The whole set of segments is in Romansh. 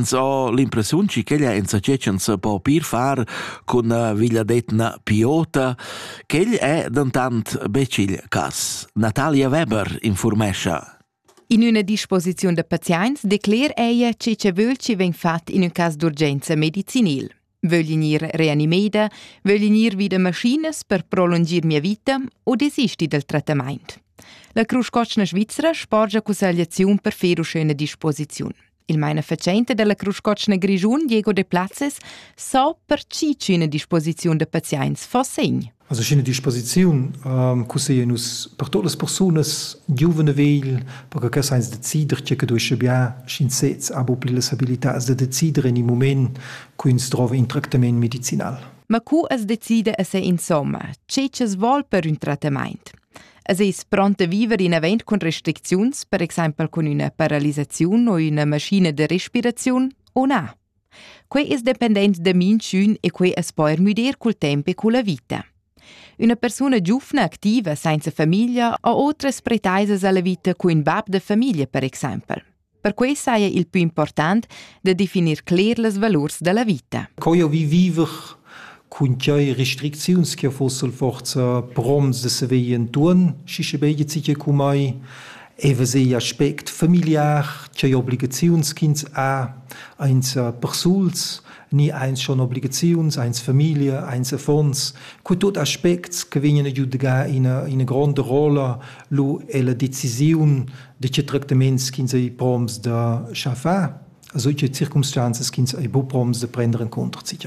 so l'impressiun che quella insatge non se po pir far cun villadetna Piota, quel è dentantbec il cas. Natalia Weber informescha. In üna disposiziun da pazients decler ella che che völ chi vegn fat in un cas d'urgenza medicinil. Vögl i gnir reanimeda, vögl i gnir vi da maschinas per prolungir mia vita u desisti dal trattamaint? La Cruscotschna svizra sporgia cussegliaziun per fer uschena disposiziun. Il mainafatschenta della Cruscotschna Grischun, Diego de Platzes, sa per chi üna disposiziun da pazients fa segn. Also sch'ina disposiziun ähm, cusseia nus per todas persunas giuvene vegl, perché che sainz decider tge che duesce bien, sch'in sez ha pli las abilitats da decider in il moment, cu ins trova in tractament medicinal. Ma cu as decide a se insomma, che es vol per un trattament? Es es pronte a viver in avent con restricziuns, per exempel con una paralisazione o una maschina de respirazione, o na? Quei es dependent da minchün e quei as po er müdir cul temp e culla vita. Üna persuna giufna activa sainza famiglia ha otras pretaisas alla vita cu ün bab da famiglia, per exaimpel. Per quei saja il più important da definir cler las valurs dalla vita. Co jo vi viver cun quei restricziuns che fossel forza proms de saver entuorn schi sche beige sich cumai eva sei aspect familiar che obligaziuns ch'ins ha eins persuls ni eins schon obligaziuns eins familie eins affons cu tot aspects che vegnan a giudgar ina ina gronda rolla lu è la decisiun de che tractaments ch'ins ei proms da schafar also che circumstanzas ch'ins ei bu proms de prender in contra sich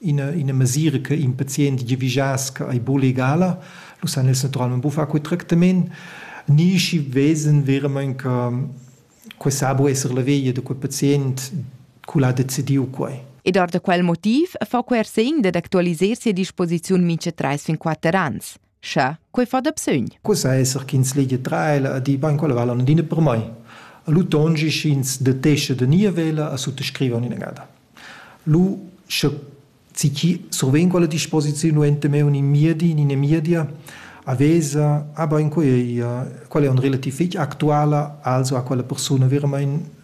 ina, ina mesira che in pazient giavischass che ei buca legala, lu san els naturalmein buca far quei tractament, ni schi vesan veramein che quei sa bu esser la veglia da quei pazient cul ha decidiu quei. Ed ord quel motiv fa quei er segn dad actualiser sia disposiziun mintga treis fin quatter ans. Scha, quei fa da bsögn. Quessa esser ch'ins legia traela e di bain quella vala adina per mai. A lu tongi sch'ins detescha da nia vela a suttascrivan inagada. Lu, sche ci surven quella disposiziun ente me un in miedi, in in miedia, a vesa, ah bain quella quella è un relativ fitg actuala, also a quella persona veramente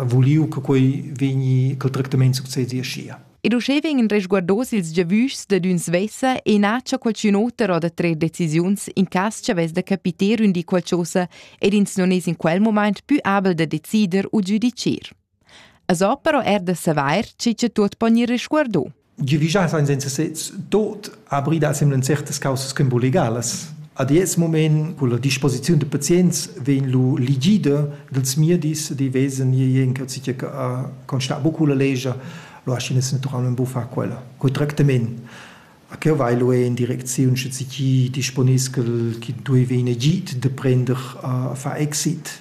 vuliu che quei vegni, che il tractament succedi aschia. Ed uschè vegnan resguardos ils giavüschs dad ün svessa e nacha qualchün oter o da trer decisiuns in cas cha vess da capiter ün di qualchosa ed ins non es in quel momaint pü abel da decider u giudichir. As ho però er da savair chi cha tuot po gnir resguardo. giavischar senza sez tot abrir da semlen certas causas ch'en legalas. Ad ets moment con la disposiziun de pazients vegn lu ligida dels miedis di wesen je en che a constar bucu la legia lo aschinas naturalment bu far quella quei tractament a che vai lo en direcziun sche ci disponiscel chi dui vegn egit de prender a fa exit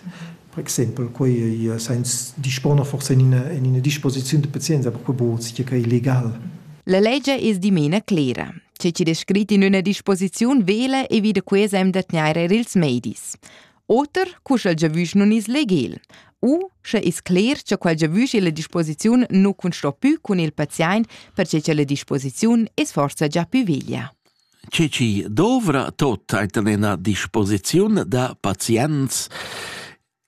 Per exempel quei ei sens disponer forsa en ina, en ina disposiziun de pazienza, per quei buc che quei legal. La legia es dimena clera. Che chi descrit in üna disposiziun vela e vi da quesa em da tgnair eir ils medis. Oter, cu sch'el giavüsch nun is legal. U sche is cler cha quel giavüsch illa disposiziun nu cunsto pü cun il paziaint perche cha la disposiziun es forsa già pü veglia. che chi dovra tot eir ten ina disposiziun da pazients.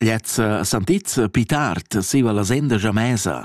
Lezza santizza pi tard siva la senda jamesa.